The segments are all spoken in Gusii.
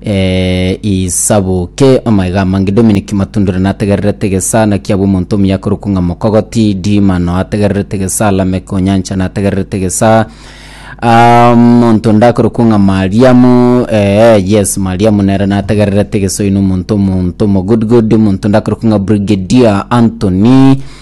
eh, isabuke amaiga amange Dominic Matundure nategererete gesana kia bw'omonto omuya korokwa ng'a Mokogoti Dimano ategererete gesa Lamek Onyancha nategererete gesa Ah, monto ndakorokwa ng'a Mariamu eh, yes Mariamu nere nategererete gesoino omonto omonto mo good good omonto ndakorokwa ng'a Brigadier Anthony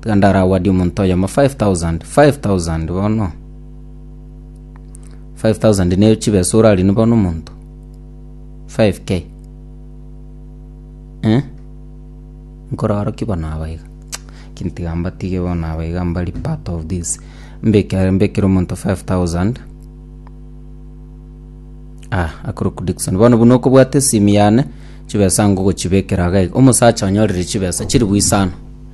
Tiga ndarawadie omonto oyomo 5000 5000 bono 5000 ne chibesa orarine bono omonto 5k eh nkoraro ki bono aba iga lakini tiga mbatige bono aba iga mbari part of this mbekere mbekere omonto 5000 ah akoroku Dickson bono buna okobwate esimi yane chibesa ngogochibekera iga iga omosacha onyorire chibesa chiri bwe isano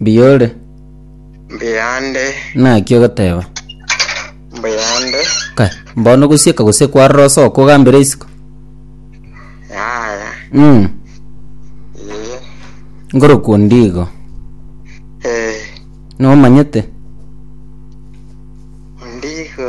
Mbiyore. Mbiyande. Naki ogoteba. Mbiyande. Ka, mbono gosieka gose kwarora osoko ogambere isiko. Yaya. Mm. Iye. Ngorokwo ndigo. Eh. Nomanyete. Ndigo.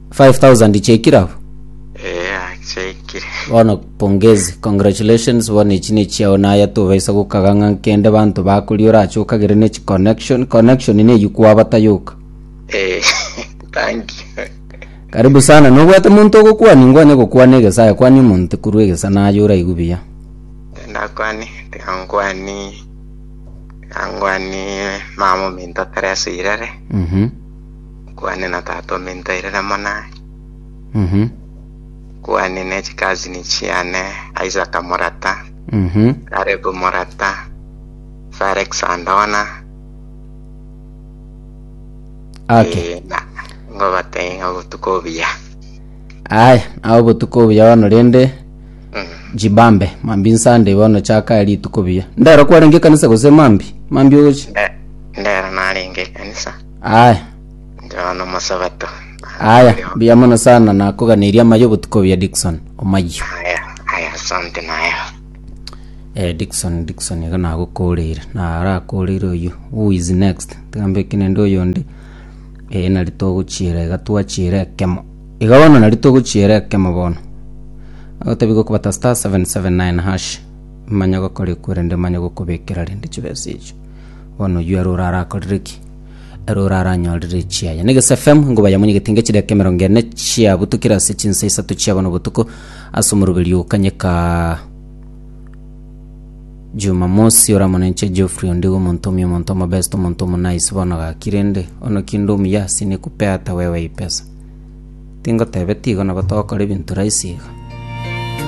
5000 chiaikire abwo Ee, achiaikire. bono pongezi congratulations bono echi ne chiao naye tobaisa gokaga ng'a nkende banto bakori orache okagere ne chi connection connection ne eywo kwabata yoka Ee, thank you. karibu sana nobwate monto ogokwania ngwanye gokwana egesa aye kwania omonte korwa egesa naye oraigu buya Ndakwani, tiga nkwani, tiga nkwani mama ominto Teresa Irere. mhm Kuhani na tata omintaire na monaye. Mhm. Kuhani ne chikazini chiane, Isaka morata, Mhm. Karebu morata, Felix andona. Okay. Eh, na ngobatei ng'a obotuko obuya. Aya, ao botuko obuya bono rende Mm. jibambe mambi nsande bono chaka rituko buya ndero kwarenge kanisa gose mambi mambi ogochi Nde- Ndero narenge ekanisa. Aye, Nchao nomosabato. aya, mbuya mono sana nakoganeria amayo obotuko buya Dickson omayo. Aya, aya, asante nayo. Eh, Dickson, Dickson iga nagokoreire, narakoreire oyo. Who is next? Tigambe ekenende oyonde. Eh, nari togochiera iga twachiera ekemo. Iga bono nari togochiera ekemo bono. Agotabi gokobata star 779 hash. Manya gokora ekwerende manya gokobekera rende chibesa echo. Bono oyio ere orarakorire ki? Ere oraranyorire chiaye. Na Egeso FM ingo bayamonyegetie nge chidakika emerongo ene chiabutukire ase chinsa isato chia bono botuko ase omoroberi o Kanyeka Jumamosi oramonenche Geoffrey Ondigo omonto omuya omonto omobest omonto omonayisi bono gaki rende ono kinde omuya ase nekupea ata wewe eye pesa tingotebe tigo nabo togokora ebinto rahisi iga